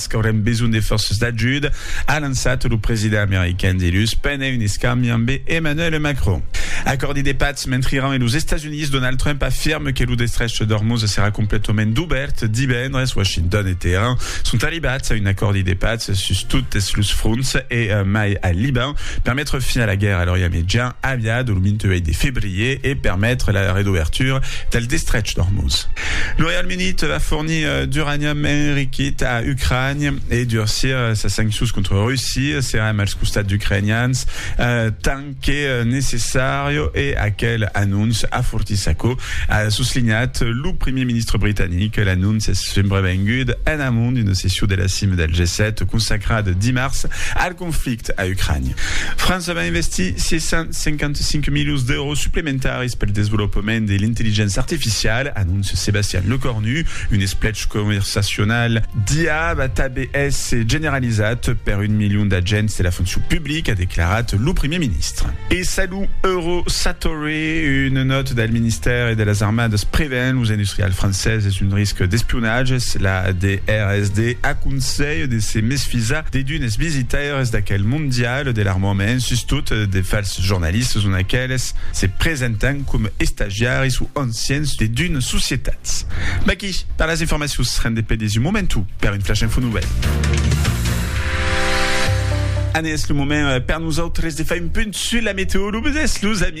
Es qu'aurem besonh de fòrces d'ajuda, a lançat lo president american dilhus pendent un escambi ambe Emmanuel Macron. Acòrdi de patz mentre Iran e los Estats Units, Donald Trump afirme que lo destrech d'Ormuz serà completament dubèrt divendres. Washington e Teheran sont arribats a un acòrdi de patz sus totes los fronts e mai al Liban per metre fin a la guèrra a l'Orient Mejan aviada lo 28 de febrier e permetre la redobertura del destrech d'Ormuz. Lo Reialme Unit va fornir D'uranium enriquit a Ucrània e durcir sas sanccions contra Russia, serem als costats d'ucrainians tant que necessària e aquel anonç afortís aquò, a soslinhat lo primièr ministre britanic. L'anonç es subrevengud en amont d'una session de la cima del G7 consacrada dimars al conflicte a Ucrània. França va investir 655 milions d'èuros suplementaris pel desvolopament de l'intelligéncia artificiala, anóncia Sébastien Lecornu. Un esplech conversacional d'IA va tanben èsser generalizat per un milion d'agents de la foncion publica, a declarat lo primièr ministre. E Salu Euro Satorre, una nòta del ministèri de las Armadas prevèn los industrials franceses d'un risc d'espionatge. La DRSD aconselha de se mesfisar de d'unes. Es visitaires d'aquel mondial de l'armament, sustot de fals jornalistes ont aqueles se presentan com estagiaris o anciens de d'una societat. Vaquí per las informacions, rendé per dins un moment o per un flash info nouvèl. Anés lo moment per nosautres de far un punt sus la meteo, lo vesés los amis.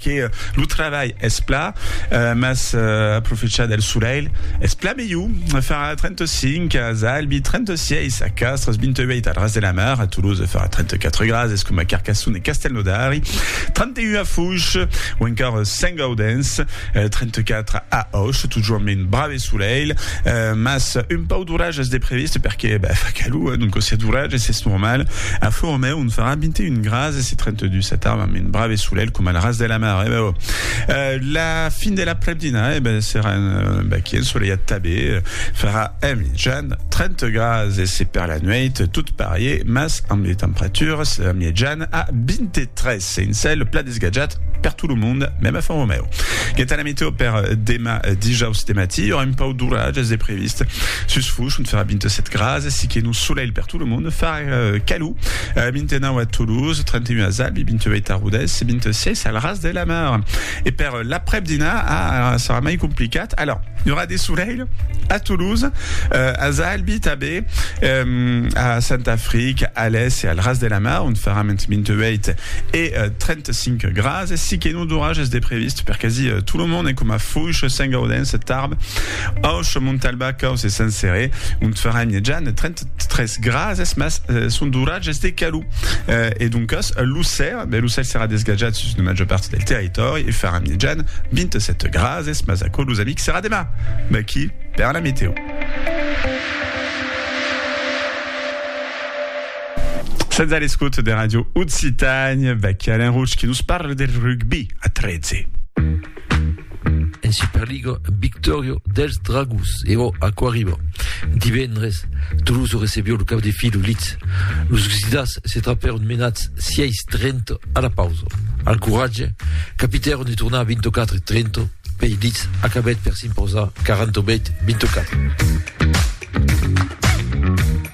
Que lo trabalh es pla mas aprofechar del solelh es pla melhor, farà 35 a Zalbi, 36 a Castres, 28 al Ras de la Mar, a Toulouse farà 34 grads, es coma Carcassonne e Castelnaudari, 31 a Foix o encara Saint-Gaudens, 34 a Auch, totjorn ben brave e solelh, mas un pauc d'oratges de previst perque fa calor, donc si a d'oratges es normal, a Fourmeu on farà 21 grads. Ase se trente dus a tarba amb un brave solelh coma al ras de la mar, eh ben oh! La fin de l'aprèp-dinar, eh ben serà un baqui ensoleiat tabé, farà a mijan trente grads e se per la nueit tot parié mas amb de temperaturas mièjan a vinte tres e un cèl plat desgatjat per tot lo monde, mèm a Font Romèu. Gueta la meteo per demà dijaus de matí, i aurà un pauc d'oratges de previst. Sus Fush, ont farà vinte set grads, si que nos solelh per tot lo monde, farà calor. 29 a Toulouse, 31 a Zab, 28 a Rodés e 26 al Ras de la Mar. E per l'aprèp dinar ah, serà mai complicat. Alors, i aurà de solelh a Toulouse, euh, a Zalbi tabé, euh, a Santa Fric, a l'Es e al Ras de la Mar, on farà ment 28 e euh, 35 grads. E si que non d'orages de previst per quasi euh, tout le monde, e coma Foix, Saint-Gaudens, Tarbes, Auch, Montalba, Caus e Saint-Céré, on farà immediat 30 tres grases, mas eh, son d'oratges de calou. Eh, e doncas, l'ocèl, ben, l'ocèl serà desgatjat sus la major part del territori e farà mitjan 27 grases, mas aquò, los amics, serà demà, d'aquí per la meteo. Sens a l'escut de Radio Occitània, Becky Alain Rouge qui nous parle del rugby a 13. En Superliga, victòria dels Dragons e o aquò arriba. Divendres, Toulouse recebió lo cap de filo Leeds. Los Gsidats se trapèron menats 6-30 a la pausa. Al coratge, capitèron de tornar 24-30 pei Leeds acabèt per s'imposar 48-24.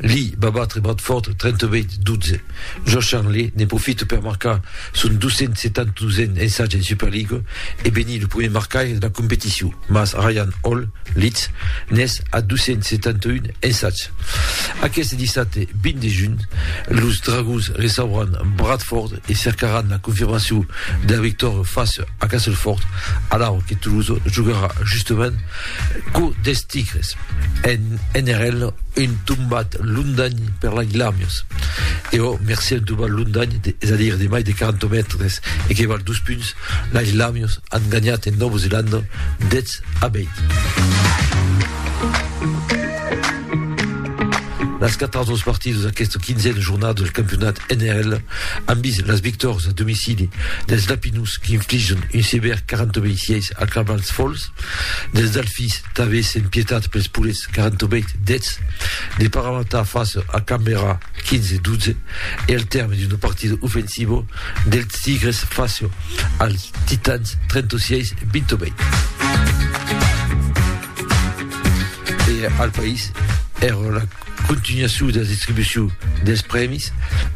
Lee va batre Bradford 38-12. Josh Hanley ne profite per marcar son 272n ensatge en Superliga e venir lo prumèr marcaire de la competicion, mas Ryan Hall, Leeds, n'es a 271 ensatge. Aqueste dissabte 20 de junh, los Dragons recebràn Bradford e cercaràn la confirmacion de la victòria fàcia a Castleford, alara que Toulouse jogarà justament Quò des tigres, en NRL, un tombat londany per l'Aglamius, e ò mercé un tombat londany, es a dire de mai de 40 mètres e que val dos punts, l'Aglamius an ganhat en Nòva Zelanda 10 a 20. Las quatras dos partidas d'aquesta quinzena jornada del campionat NRL an vist las victòrias a domicili dels Lapinus qu'infligen un sevèr 40 a 26 al Cavals Fòls, Dels Delfins, tanben sen pietat pels poulets 48 deths, de Parramatta face a Canberra 15 12 e al tèrme d'un partido ofensivo dels Tigres face als Titans 36 28. E al país, èra la. Continuacion dera distribucion des prèmis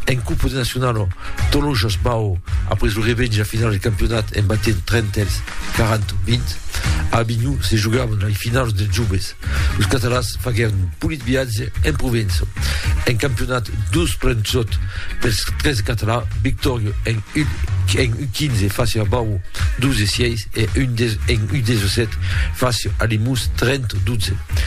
en Copa de Nacionalo, Tolojas Bau après lo revènge a finals de campionat en batent Trentèls 40-20. A Avinhon se jogavan lai finaus dels joves. Los catalans faguèron un polit viatge en Provença. En campionat dus plens sòt pels tres catalans, victòria en U15 fàcia a Bau 12-6 e en U17 fàcia a Limús 30-12.